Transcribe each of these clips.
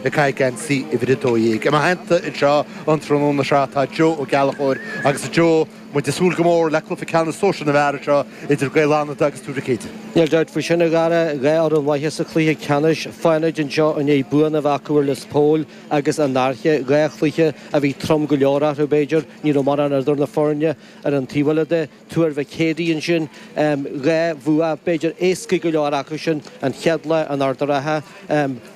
ag caitheamh geansaí uimhir a dó dhéag. I mo theannta anseo an tráthnóna seo tá Joe Ó Gallachóir agus, a Joe, muid ag súil go mór le cluiche ceannais sóisir na bhfear anseo idir Gaeil Fhánada agus Tuar Mhic Éide. Níl dabht faoi sin, a Dhara, dhá fhoireann mhaithe sa chluiche ceannais, Fánaid anseo i ndiaidh buanna a bheith acu ar Lios Póil agus an Fhairche, dhá chluiche a bhí trom go leor eatarthu, b'fhéidir, ní raibh mórán idir na foirne ar an taobh eile de. Tuar Mhic Éadaigh ansin, dhá bhua, b'fhéidir, éascaí go leor acu sin an chéad lá in Ard a' Rátha,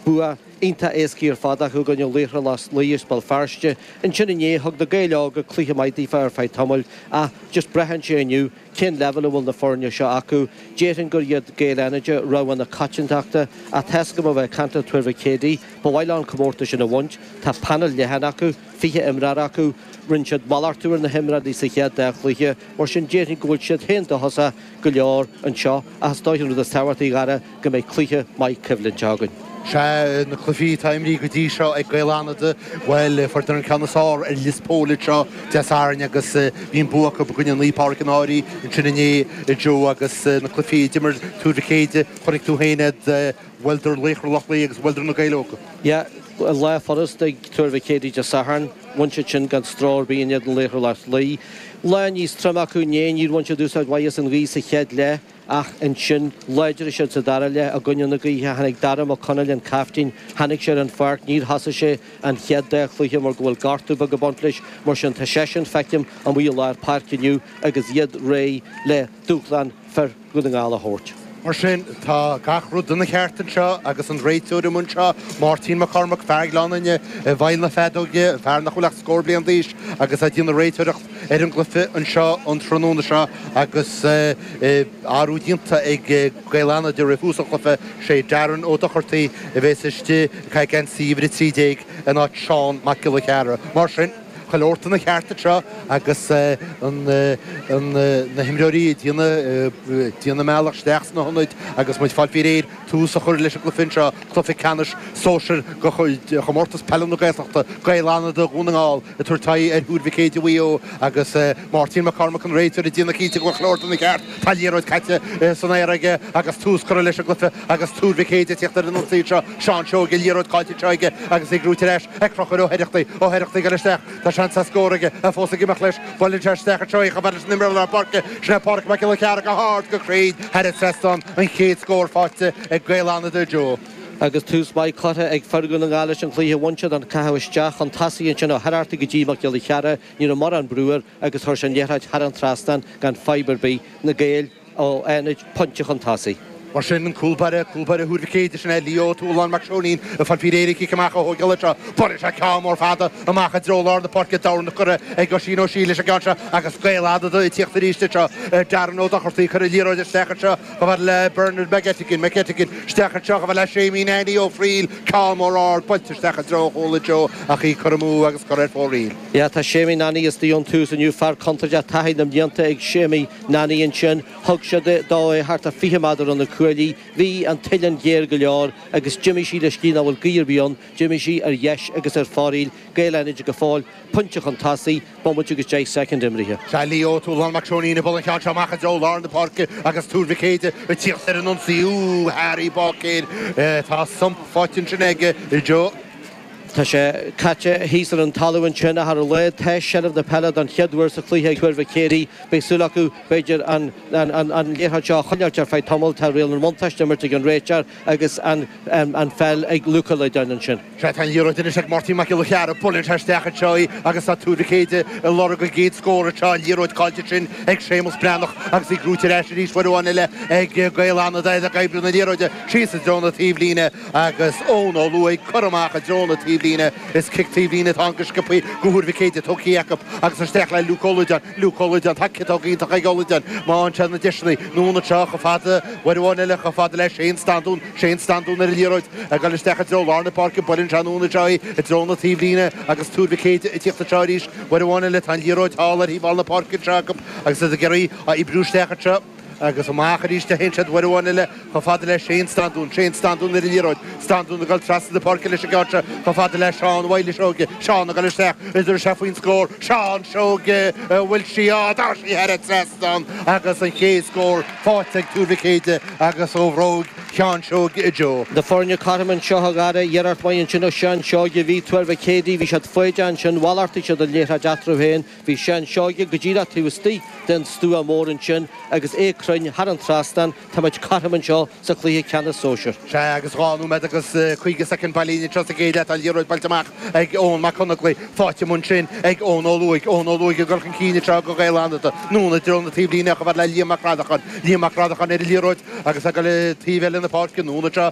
bua iontach éascaí ar fad acu i gcoinne Laochra Loch Lao as Béal Feirste. Ansin inné, thug na Gaeil Óga cluiche maith daofa ar feadh tamaill ach just braitheann sé inniu cén leibhéal a bhfuil na foirne seo acu. Déarfainn gur iad Gaeil Fhánaide rogha na coitiantachta ach tá a fhios agam ó bheith ag caint le Tuar Mhic Éadaigh, ba mhaith leo an comórtas sin a bhaint. Tá paineal leathan acu. 20 imreoir acu, rinne siad malartú ar na himreoirí sa chéad dá chluiche, mar sin déarfainn go bhfuil siad féin dóchasach go leor anseo ach is dóigh an rud is tábhachtaí a Dhara go mbeidh cluiche maith coimhlinte againn. Sea, na cluichí atá imrithe go dtí seo ag Gaeil Fhánada, bhuel, fuaireadar an ceann is fearr ar Lios Póil anseo Dé Sathairn agus bhí an bua acu i gcoinne Naomh Pádraig an Fhairche ansin inné, Joe, agus na cluichí a d'imir Tuar Mhic Éide, chonaic tú féin iad. Bhuaileadar Laochra Loch Lao agus bhuaileadar na Gaeil Óga. Ya, lá furast ag Tuar Mhic Éadaigh Dé Sathairn, bhain siad sin gan stró ar bith in éadan Laochra Loch Lao. Lá níos troime acu inné, níor bhain siad úsáid mhaith as an ghaoth sa chéad leath ach ansin, láidrigh siad sa dara leath i gcoinne na gaoithe. Tháinig Dara Mac Conaill, an caiftín, tháinig sé ar an pháirc, níor thosaigh sé an chéad dá chluiche mar go bhfuil gortú beag ag baint leis, mar sin tá seisean, feicim, amuigh i lár páirce inniu agus iad réidh le dúshlán fir Dhún na nGall a thabhairt. Mar sin, tá gach rud ina cheart anseo agus an réiteoir amuigh anseo, Máirtín Mac Cormaic, fear Ghleann Fhinne i bhfeighil na feadóige, fear nach bhfuil ach scór bliain d'aois agus a dhéanfaidh réiteoireacht ar an gcluiche anseo an tráthnóna seo agus athrú déanta ag Gaeil Fhánada roimh thús an chluiche. Sé Darren Ó Dochartaigh a bheas istigh, ag caitheamh geansaí uimhir 13, in áit Seán Mac Giolla Chearra. Mar sin. Chuile shórt ina cheart anseo agus na himreoirí ag déanamh a mbealach isteach sna hionaid agus muid ag fáil faoi réir tús a chur leis an gcluiche anseo, cluiche ceannais sóisir de Chomórtas Peile na Gaeltachta, Gaeil Fhánada Dhún na nGall ag tabhairt aghaidh ar Thuar Mhic Éide Mhaigh Eo agus Máirtín Mac Cormaic, an réiteoir, ag déanamh cinnte go bhfuil chuile shórt ina cheart. Tá liathróid caite san aer aige agus tús curtha leis an gcluiche agus Tuar Mhic Éide ag tíocht ar an ionsaí anseo, Seán Seoige, liathróid caillte anseo aige agus é ag rúid ar ais. Ag Conchúr Ó hOireachtaigh, Ó hOireachtaigh ag goil isteach, tá seans ar scór aige, a fós ag imeacht leis, buaileann sé isteach ina threo é, chomh fada leis an imreoir lár páirce, sin é Páraic Mac Giolla Chearra go hard, go cruinn, thar an trasnán, an chéad scór faighte ag Gaeil Fhánada a Joe. Agus tús maith curtha ag fir Dhún na nGall leis an gcluiche bhain siad an caitheamh isteach chun tosaigh ansin ó Heraghty go dtí Mac Giolla Chearra, ní raibh mórán brú air agus chuir sé an liathróid thar an trasnán gan fadhb ar bith, na Gaeil. ó Fhánaid pointe chun tosaigh. Mar sin, an cúlbáire, cúlbáire Thuar Mhic Éadaigh, sin é Leo Toolan Mac Seoinín, ag fáil faoi réir cic amach a thógáil anseo. Buaileann sé ceann mór fada amach i dtreo lár na páirce, dorn curtha ag Oisín Ó Siail leis an gceann seo agus Gaeil Fhánada ag tíocht arís anseo. Darren Ó Dochartaigh ag cur na liathróide isteach anseo, chomh fada le Bernard McGettigan, McGettigan isteach anseo, chomh fada le Séamie Nanny Ó Fríl, ceann mór ard, buailte isteach i dtreo an chúil anseo ach í curtha amú agus curtha ar fóraoil. Tá Séamie Nanny istigh ón tús inniu, fear contúirteach, taithí na mblianta ag Séamie, Nanny ansin, thug siad dó é thart ar fiche méadar ó na cuaillí. Bhí an t-uillinn géar go leor agus d'imigh sí leis, cé nach bhfuil gaoth ar bith ann, d'imigh sí ar dheis agus ar fóraoil, Gaeil Fhánada go fóill, pointe chun tosaigh, bomaite agus deich soicind imeartha. Tá Leo Toolan Mac Seoinín ag bualadh an ceann seo amach i dtreo lár na páirce agus Tuar Mhic Éadaigh ag tíocht ar an ionsaí. Úúú, Harry Bácéir, tá thump faighte ansin aige, a Joe. Tá sé caite thíos ar an talamh ansin, a Gharry, tá seilbh na peile don chéad uair sa chluiche ag Tuar Mhic Éadaigh. Beidh súil acu, b'fhéidir, an liathróid seo a choinneáilt ar feadh tamaill. Tá riail an bhuntáiste á imirt ag an réiteoir agus an pheil ag Luke Ó Loideáin ansin. Sea, tá an liathróid anois ag Máirtín Mac Giolla Chearra. Buaileann sé isteach anseo í agus tá Tuar Mhic Éadaigh ag lorg a gcéad scór anseo. An liathróid caillte ansin ag Séamus Breathnach agus í brúite ar ais arís. Uair amháin eile ag Gaeil Fhánada ag oibriú na liathróide síos i dtreo na taobhlíne. agus Eoin Ó Laoghóg curtha amach i dtreo na taobhlíne. Is cic taobhlíne atá ann go sciobtha do Thuar Mhic Éadaigh, tógtha acu agus isteach le Luke Ó Loideáin. Luke Ó Loideáin, tá ciotóg iontach ag Ó Loideáin má fhaigheann sé na deiseanna. Anonn anseo chomh fada, uair amháin eile chomh fada le Shane Standún. Shane Standún ar an liathróid, ag dul isteach i dtreo lár na páirce, buaileann sé anonn anseo í i dtreo na taobhlíne agus Tuar Mhic Éadaigh ag tíocht anseo arís. Uair amháin eile tá an liathróid thall ar thaobh thall na páirce anseo acu agus iad ag iarraidh á oibriú isteach anseo. agus amach arís, téann siad uair amháin eile chomh fada le Shane Standún, Shane Standún ar an liathróid, Standún ag dul trasna na páirce leis an gceann seo chomh fada le Seán Mhaghnuis Seoige, Seán ag dul isteach tugann sé faoin scór, Seán Seoige, an bhfuil sí ann, tá sí thar an trasnán agus an chéad scór faighte ag Tuar Mhic Éadaigh agus ó bhróig Sheáin Seoige, a Joe. Na foirne cothrom anseo. Sea a Gharry, iarracht mhaith ansin ó Sheán Seoige, bhí Tuar Mhic Éadaigh, bhí siad foighdeach ansin, mhalartaigh siad an liathróid eatarthu féin, Bhí Seán Seoige go díreach taobh istigh den stua mór ansin agus é cruinn thar an trasnán, táimid cothrom anseo sa chluiche ceannais sóisir. Sea agus dhá nóiméad agus caoga soicind bailithe anseo sa gcéad leath, tá an liathróid buailte amach ag Eoghan Mac Conaglaigh, faighte ansin ag Eoin Ó Laoghóg. Eoin Ó Laoghóg ag dul chun cinn anseo do Gaeil Fhánada, anonn i dtreo na taobhlíne chomh fada le Liam Mac Reannacháin. Liam Mac Reannacháin ar an liathróid agus ag gabháil taobh eile na páirce, anonn anseo,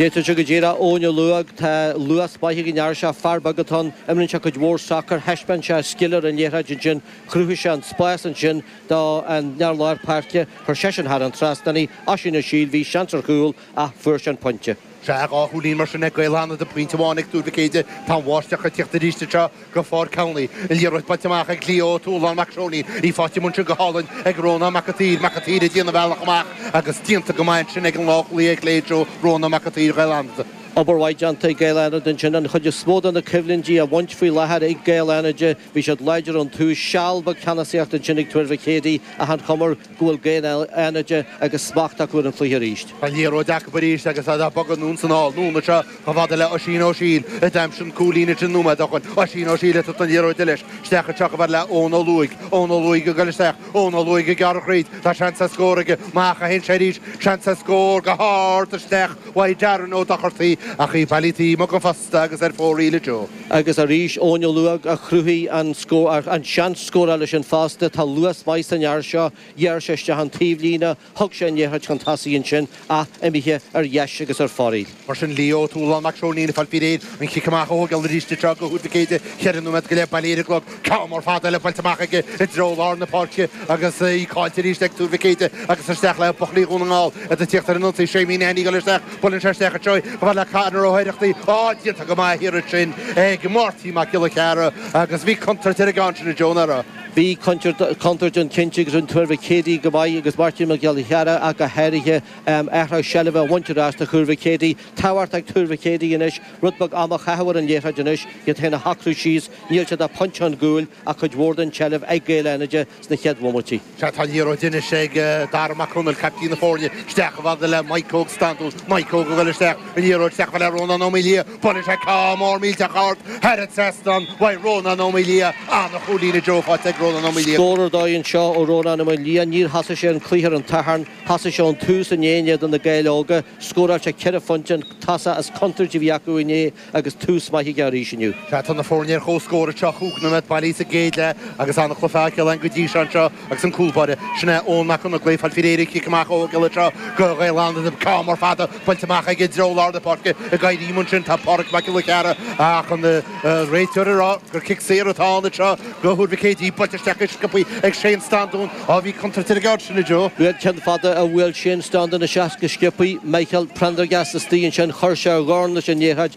D'fhéadfadh sé go díreach Eoin Ó Laoghóg, tá luas breá ag an fhear seo, fear beag atá ann, imríonn sé cuid mhór sacair, thaispeáin sé a scil ar an liathróid ansin, chruthaigh sé an spás ansin do an fear lár páirce, chuir seisean thar an trasnán í, Oisín Ó Siail, bhí seans ar chúl ach fuair sé an pointe. Sea, dhá chúilín mar sin ag Gaeil Fhánada, pointe amháin ag Tuar Mhic Éadaigh, tá an bháisteach ag tiocht arís anseo. go Ford County, an liathróid bainte amach ag Leo Ó Tualáin Mac Seoinín, í faighte ansin go hálainn ag Rónán Mac a tSaoir Mac a tSaoir ag déanamh a bhealach amach agus déanta go maith ansin ag an leathchúlaí clé seo Rónán Mac a tSaoir Gaeil Fhánada. Obair mhaith déanta ag Gaeil Fhánada ansin an chuid is mó de na coimhlintí a bhaint faoi láthair ag Gaeil Fhánada, bhí siad láidir ón tús, seal beag ceannasaíocht ansin ag Tuar Mhic Éadaigh ach an chuma air go bhfuil Gaeil Fhánada agus smacht acu ar an chluiche arís. An liathróid acu arís agus iad á bogadh anonn is anall, anonn anseo Chomh fada le Oisín Ó Siail, a d'aimsigh an cúilín sin nóiméad ó shoin, Oisín Ó Siail ag tabhairt na liathróide leis isteach anseo chomh fada le Eoin Ó Laoghóg, Eoin Ó Laoghóg ag goil isteach, Eoin Ó Laoghóg ag gearradh thríd, tá seans ar scór aige, amach a théann sé arís, seans ar scór, go hard isteach uaidh Darren Ó Dochartaigh ach í bailithe taobh amuigh den phosta agus ar fóraoil a Joe. Agus arís Eoin Ó Laoghóg a chruthaigh an scór, an seans scórála sin fosta, tá luas maith san fhear seo, ghearr sé isteach an taobhlíne, Thug sé an liathróid chun tosaigh ansin, ach imithe ar dheis agus ar fóraoil. Mar sin, Leo Tualáin Mac Seoinín ag fáil faoi réir an chic amach a thógáil arís anseo do Thuar Mhic Éadaigh, cheithre nóiméad go leith bailithe ar an gclog, ceann mór fada eile buailte amach aige i dtreo lár na páirce agus í caillte arís ag Tuar Mhic Éadaigh agus isteach le buachaillí Dhún na nGall ag tíocht ar an ionsaí. Séimí Nanny ag goil isteach, buaileann sé isteach anseo chomh fad le Conor Ó hOireachtaigh, ach déanta go maith thiar ansin ag Máirtín Mac Giolla Chearra agus bhí contúirt ar an gceann sin, a Joe, nach raibh. Bhí contúirt ann cinnte agus rinne Tuar Mhic Éadaigh go maith agus Máirtín Mac Giolla Chearra ach go háirithe athraigh seilbhe a bhaint ar ais do Thuar Mhic Éadaigh. Caithfidh Tuar Mhic Éadaigh anois rud beag ama a chaitheamh ar an liathróid anois iad féin a shocrú síos. Níl siad ach pointe chun cúil ach cuid mhór den tseilbh ag Gaeil Fhánada sna chéad bhomaití. Sea, tá liathróid anois ag Dara Mac Conaill, caiptín na foirne. Isteach chomh fad le Maidhc Óg Standún. Maidhc Óg a bhuail isteach an liathróid isteach le Rónán Ó Maoildhia. Buaileann sé ceann mór millteach ard thar an trasnán uaidh Rónán Ó Maoildhia, an-chúilín, a Joe, faighte ag Rónán Ó Maoildhia. Scór ar dóigh anseo ó Rónán Ó Maoildhia. Níor thosaigh sé an cluiche ar an Satharn. Thosaigh sé ón tús inné in éadan Na Gaeil Óga. Scóráil sé ceithre phointe, an tosaí is contúirtí a bhí acu inné agus tús maith aige arís inniu. Tá na foirne ar chomhscór anseo, cúig nóiméad bailithe sa gcéad leath agus an-chluiche againn go dtí seo anseo. Agus an cúlbáire, sin é Eoin Mac Congail, ag fáil faoi réir an cic amach a thógáil anseo do Ghaeil Fhánada agus ceann mór fada buailte amach aige i dtreo lár na páirce. Ag éirí ansin tá Pádraig Mac Giolla Chearra ach an réiteoir ag rá gur cic saor atá ann anseo do Thuar Mhic Éadaigh, buailte isteach go sciopthaí ag Shane Standún. Á bhí contúirt ar an gceann sin, a Joe. Bhí an ceann fada a bhuail Shane Standún isteach go sciopthaí, Michael Prendergast istigh ansin, chuir sé a dhorn leis an liathróid,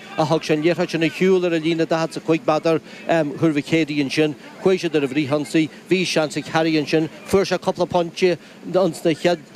a thug sé an liathróid sin ar shiúl ar an líne 45 meadar, ehm, thart fá Chéidigh ansin, chuaigh siad ar an fhrithionsaí, bhí seans ag Harry ansin, fuair sé cúpla pointe, ins an chéad.